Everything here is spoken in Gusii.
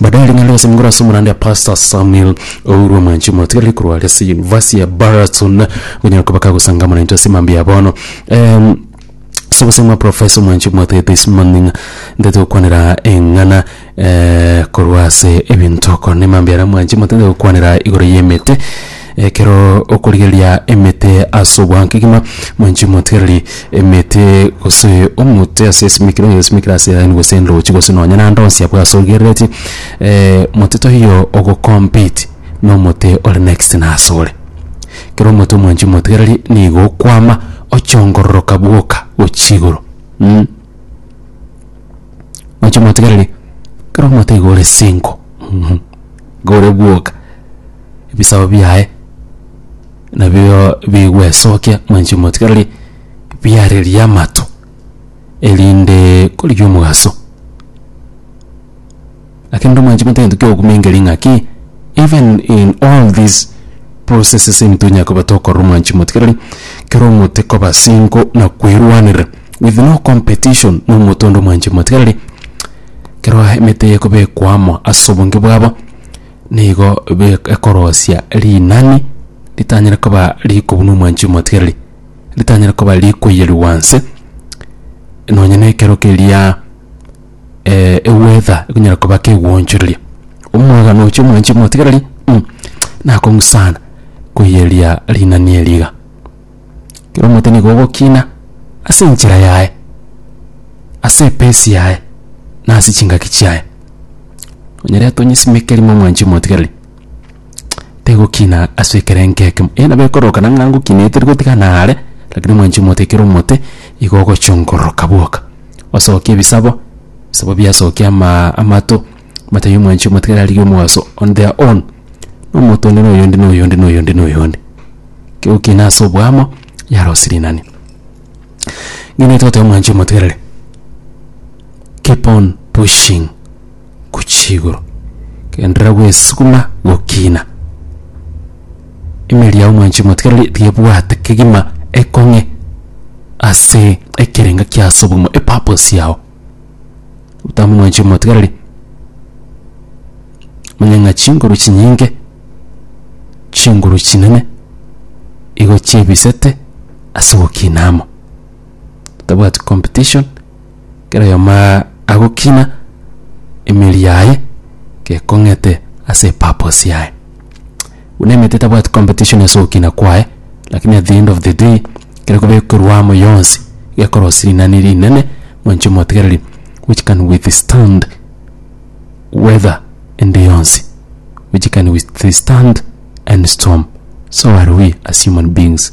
Baadaye ring'ana rigase migoro ase omorande ya Pastor Samuel Ouru Omwanchi omotigareri korwa are ase University ya Baraton konyara koba kagosangamana intwe ase emambia ya bono Em, ase obosemi bwa Professor Omwanchi omwate this morning ntete gokwanera eng'ana eh, korwa ase ebinto okora na emambia yaria Omwanchi omotete gokwanera igoro y'emete Ekero okorigereria emete ase obwango kegima, mwanche motigereri emete gose omote ase esimekire oyo osimekire ase line gose endochi gose nonye naende onsi abwo ase origereretie mote toiyo ogo compete na omote ore next na ase ore. Kero omote mwanchi motigereri nigo okwama ochongororoka bwoka gochia igoro mh. Mwanchi motigereri kero omote igo ore single mh igo ore bwoka. ebisaku biaye nabio bigwesokia mwanchi motigarari biarerie amato erinde korigia omogaso. Lakini rende mwanchi motagete kiogokumengeri ng'aki even in all these processes into onye koba tokorora omwanchi motigarari kero omote koba single na kwerwanera with no competition na omote onde omwanchi motigarari kero emete eye ekobekwa amo ase obonge bwabo nigo be- ekorosia rinani ritanyare koba rikobua na omwanchi omotigereri ritanyare koba rikoiyerigwa nse nonye na ekero keria eh, eweather ekonyara koba kegoonchoreria omwagano oche omwanchi omotigereri mh, nakong'u sana koiyeria rinani eri iga. Kera omonto nigo ogokina ase enchera yaye, ase epesi yaye, na ase chingaki chiaye. Onyarete onyesimekeri momwanche omotigereri, tegokina ase ekerengo ekemo. Eeh nabo ekorokana ng'a ngokinete tari gotigana are, rakini omwanchi omote ekero omote, igo ogochia ongororoka bwoka. Osokia ebisabo, bisabo biasokia amaa amato. Matayo mwanchi omotigari arigie omogaso on their own, nomonto onde na oyonde na oyonde na oyonde na oyonde. Kegokiina ase oboamo yare ase rinani. Ninki togoteba mwanchi omotigareri? Keep on pushing gochia igoro, genderera gwesuguma gokiina. Emeeri yao mwanchi omotigareri tiga ebwate kegima ekong'e ase ekerengo kia ase obogima, epurpose yao. otamonwanchi omotigareri manya ng'a chinguru chinyinge chinguru chinene igo chiebisete ase ogokina amo totabwati competition kera oyomo aa agokina emeri yaye gekong'ete ase epurpose yaye. Buna emete etabwati competition ase ogokina kwaye, lakini at the end of the day kere koba ekorwa amo yonsi gekorosia rinani rinene mwanche omotigereri which can withstand weather ende yonsi, which can withstand any storm. So are we as human beings.